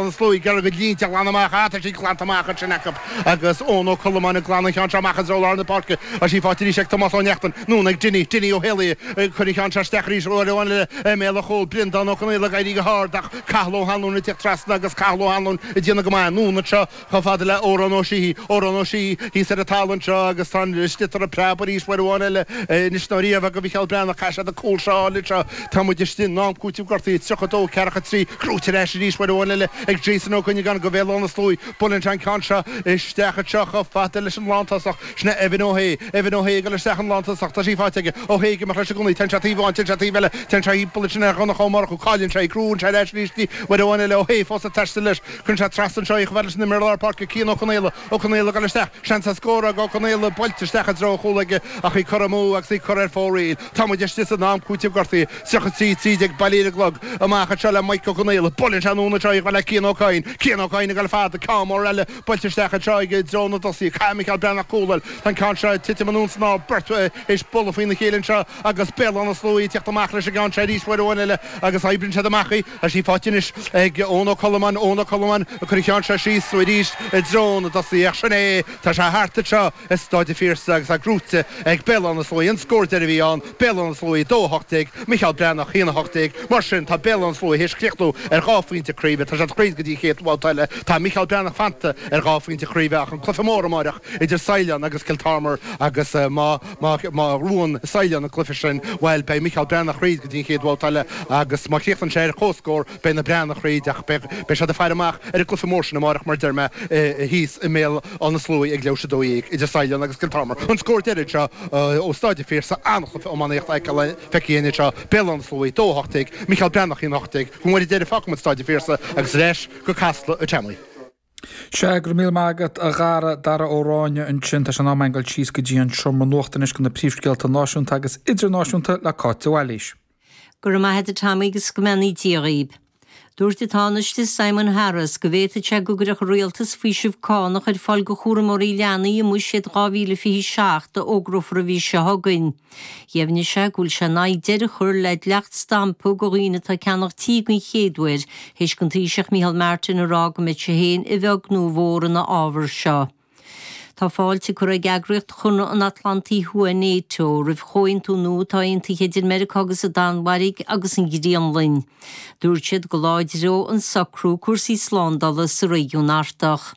na Sluaí ag iarraidh a gcuid línte a ghlanadh amach tá siad glanta amach ansin acu agus Eoin Ó Colmáin ag glanadh an cheann seo amach anseo ó lár na páirce agus í faighte arís ag Tomás Ó Neachtain anonn ag Dinny, Dinny Ó hÉalaí ag cur an cheann seo isteach arís uair amháin eile i mbéal an chúil. Breandán Ó Conaola ag éirí go hard ach Cathal Ó hAnluain ag teacht trasna agus Cathal Ó hAnluain ag déanamh go maith anonn anseo chomh fada le Odhrán Ó Síthigh, Odhrán Ó Síthigh thíos ar an talamh anseo agus tá an sliotar ag preabadh arís uair amháin eile. Anois nó riamh go Mhicheál Breathnach caithfidh siad an cúl seo a fháil anseo. Tá muid istigh san am cúitimh gortaithe 32 ceathracha 3 gnóthaithe ar ais arís uair amháin eile ag Jason Ó Cuinneagáin go Bhéal Átha na Sluaí. Buaileann sé an ceann seo isteach anseo chomh fada leis an lántosach. Sin é Evan Ó hAodha. Evan Ó hAodha ag dul isteach an lántosach. Tá sí faighte aige. Ó hAodha ag imeacht leis i gcónaí. Téann sé taobh amháin, téann sé taobh eile. Téann sé thimpeall ansin ar Dhonncha Ó Murchú. Cailleann sé í. Gnóthaíonn sé ar ais arís í uair amháin eile. Ó hAodha fós ag taisteal leis. Cuireann sé trasna anseo í chomh fada leis an imireoir lár páirce Cian Ó Conaola. Ó Conaola ag dul isteach. Seans ar scór ag Ó Conaola, buailte isteach i dtreo an chúil aige ach í curtha amú agus í curtha ar fóraoil. Tá muid istigh san am cúitimh gortaithe. 33, 13, bailithe ar an gclog. Amach anseo le Maidhc Ó Conaola. Buaileann sé anonn anseo le Cian Ó Cadhain. Cian Ó Cadhain ag dul fada. Ceann mór eile buailte isteach anseo aige i dtreo na dtosaithe. Caithfidh Micheál Breathnach cúl a fháil. Tá an ceann seo ag titim anonn san aer. Beirt théis bualadh faoina chéile anseo agus Béal Átha na Sluaí ag teacht amach leis an gceann seo arís. Uair amháin eile agus oibríonn siad amach í. Tá sí faighte anois ag Eoin Ó Colmáin. Eoin Ó Colmáin ag cur an cheann seo síos arís i dtreo na dtosaithe ach sin é, tá sé thart anseo i Stáid a' Phiarsaigh agus é gnóthaithe ag Béal Átha na Sluaí. An scór deiridh a bhí ann, Béal Átha na Sluaí 2, 18, Micheál Breathnach 1, 18. Mar sin, tá Béal Átha na Sluaí théis críochnú ar dhá phointe craoibhe. Tá siad thríd go dtí an chéad bhabhta eile. Tá Micheál Breathnach fanta ar dhá phointe craoibhe ach an cluiche mór amáireach idir Saighleán agus Kiltormer agus má Má bhuann Saighleán an cluiche sin, bhuel, beidh Micheál Breathnach thríd go dtí an chéad bhabhta eile agus má chríochnaíonn sé ar comhscór, beidh na Breathnaigh thríd ach beidh siad ag faire amach ar an gcluiche mór sin amáireach, mar a deir mé, thíos i mBéal Átha na Sluaí ag leathuair théis a 12 idir Saighleán agus Kiltormer. An scór deiridh seo ó Stáid an Phiarsaigh, an-chluiche iománaíochta feicthe againn anseo, Béal Átha na Sluaí 2-18, Micheál Breathnach 1-18, go mór i deireadh fágfaidh muid Stáid an Phiarsaigh agus ar ais go Casla ag Tommy. Sea, go raibh míle maith agat, a Dhara, Dara Ó Ráinne ansin. Tá sé in am againn a ghoil síos go dtí an seomra nuachta anois go na príomhscéalta náisiúnta agus idirnáisiúnta le Cáit de Bhailís. Go raibh maith agat, Tommy, agus go mbeannaí Dia dhaoibh. Dúirt an Tánaiste Simon Harris go bhféadfadh sé go gcuirfeadh an Rialtas faoiseamh cánach ar fáil go chúramóirí leanaí i mBuiséad 2027 a fhógrófar an mhí seo chugainn. Dheimhnigh sé go bhfuil sé in aghaidh deireadh a chur le dleacht stampa go dhaoine atá ag ceannach tí den chéad uair, théis don Taoiseach Micheál Martin a rá go mbeidh sé féin a bheag nó a mhór ina fhábhar seo. Tá fáilte curtha ag eagraíocht Chonradh an Atlantaigh Thuaidh, Nato, roimh chomhaontú nua atá aontaithe idir Meiriceá agus an Danmhairg agus an Ghraonlainn. Dúirt siad go láidreodh an socrú cúrsaí slándála sa réigiún Artach.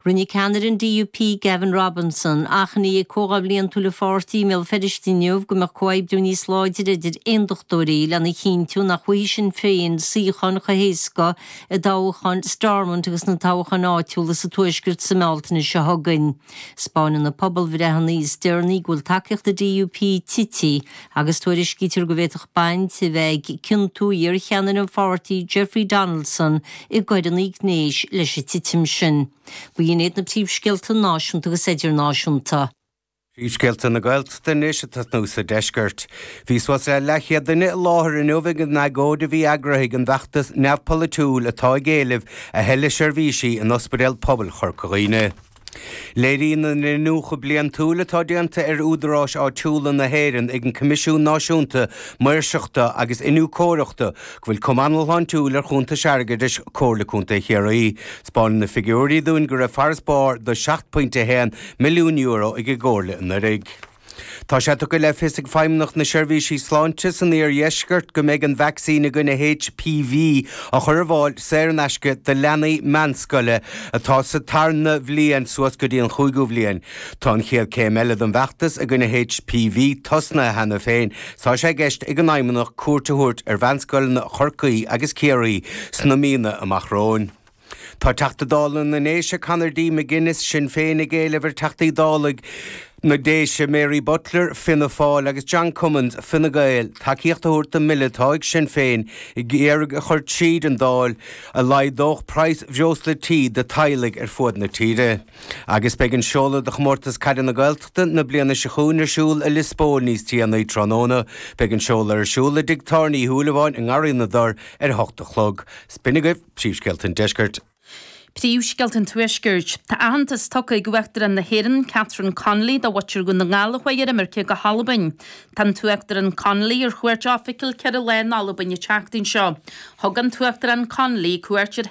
Rinne ceannaire an DUP, Gavin Robinson, achainí ag comhdháil bhliantúil a pháirtí i mBéal Feirste inniu go mbeadh comhoibriú níos láidre idir aondachtóirí lena chinntiú nach bhfaighidh Sinn Féin suíocháin chomh héasca i dtoghchán Stormont agus sna toghcháin áitiúla sa Tuaisceart sa mBealtaine seo chugainn. 'Spáineann na pobalbhreitheanna is deireanaí go bhfuil tacaíocht an DUP tite agus tuairiscítear go bhféadfadh baint a bheith ag ciontú iarcheannaire an pháirtí Jeffrey Donaldson i gcoireanna gnéis leis an titim sin. B'in iad na príomhscéalta náisiúnta agus idirnáisiúnta. Príomhscéalta na Gaeltachta anois ag tosnú sa deisceart. Bhí suas le leathchéad duine i láthair inniu ag an agóid a bhí eagraithe ag an bhfeachtas neamhpholaitiúil atá ag éileamh a thuilleadh seirbhísí in Ospidéal Pobail Chorca Dhuibhne. Léiríonn an t-iniúchadh bliantúil atá déanta ar údaráis áitiúla na hÉireann ag an gCoimisiún Náisiúnta Maoirseachta agus Iniúchóireachta go bhfuil cuma an-shláintiúil ar chuntais airgeadais Chomhairle Contae Chiarraí. 'Spáineann na figiúirí dúinn go raibh farasbarr de €7.1 milliún ag an gComhairle anuraidh. Tá sé tugtha le fios ag Feidhmeannacht na Seirbhíse Sláinte san Iardheisceart go mbeidh an vacsaín i gcoinne HPV á chur ar fháil saor in aisce do leanaí meánscoile atá sa tarna bliain suas go dtí an chúigiú bhliain. Tá an chéad céim eile den bhfeachtas i gcoinne HPV tosnaithe cheana féin. Is tá sé i gceist ag an bhFeidhmeannacht cuairt a thabhairt ar mheánscoileanna Chorcaí agus Chiarraí sna míonna amach romhainn. Tá Teachta Dála na nDéise Conor D. McGuinness, Sinn Féin, ag éileamh ar Theachtaí Dála na Déise Mary Butler, Fianna Fáil, agus John Cummins, Fine Gael, tacaíocht a thabhairt don mbille atá Sinn Féin ag iarraidh a chur tríd an Dáil a laghdódh praghas breosla tí do theaghlaigh ar fud na tíre. Agus beidh an seoladh do Chomórtas Caide na Gaeltachta na bliana seo chugainn ar siúl i Lios Póil níos déanaí tráthnóna. Beidh an seoladh ar siúl i dTigh Tábhairne Uí Shúilleabháin i nGarraí na dTor ar a hocht a chlog. Is b'in agaibh! Príomhscéalta an Deiscirt. Príomhscéalta an Tuaiscirt. Tá aitheantas tugtha ag Uachtarán na hÉireann, Catherine Connolly, do mhuintir Dhún na nGall a chuaigh ar imirce go hAlbain. Tá an tUachtarán Connolly ar chuairt oifigiúil ceithre lá in Albain an tseachtain seo. Thug an tUachtarán Connolly cuairt ar